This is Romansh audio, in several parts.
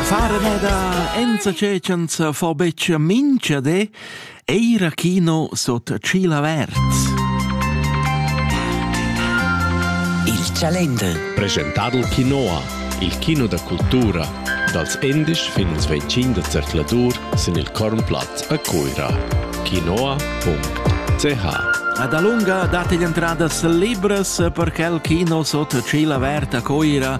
Fare neda enza cecens fo beccia mincha de, eira chino sot ciel averts. Il Calendel. Presentadel Quinoa, il kino da cultura, dals 11 fin als 25 da zercladur sin il Kornplatz a Cuira. quinoa.ch Ad alunga date gli entradas libres per quel kino sotto ciela averta a Coira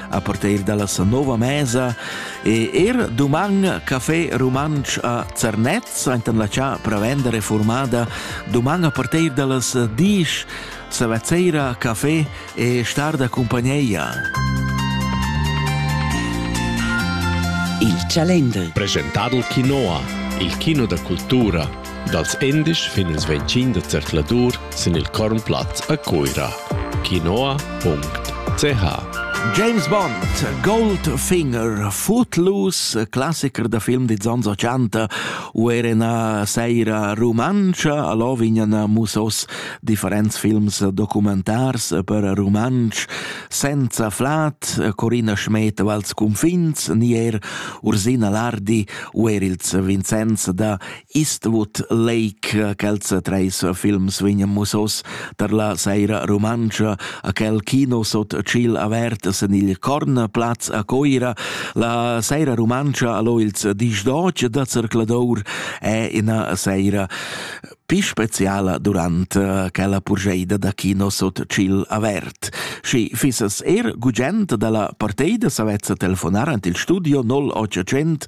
a partir dalla nova mesa e er duman Café Rumantsch a Zernez, enten la cha prevendere formada, duman a partir dallas 10 Savezzeira Café e Starda Compagnia. Il Calendar. Presentadel Quinoa, il kino da cultura Dals endisch fin ils ventschin da zercladur sin il Kornplatz a Cuira. Quinoa.ch James Bond, Goldfinger, Footloose, classicher da film di ans 80 u era una seira romancha, allò vignan musos differents films documentars per romansch, senza flat, Corina Schmed vals confins, nier Ursina Lardi u er ils Vincenz da Eastwood Lake, quels treis films vegnan musos tar la saira rumantscha a quel kino sot tschiel avert sen il Cornplatz a Coira. La saira rumantscha allo ils dis d'oc da Zercladour è ina saira più speciala durant eh, quella purgeida da kino sot ciel avert. Schi fissas er gugent dalla parteida savezza telefonar ant il studio 0800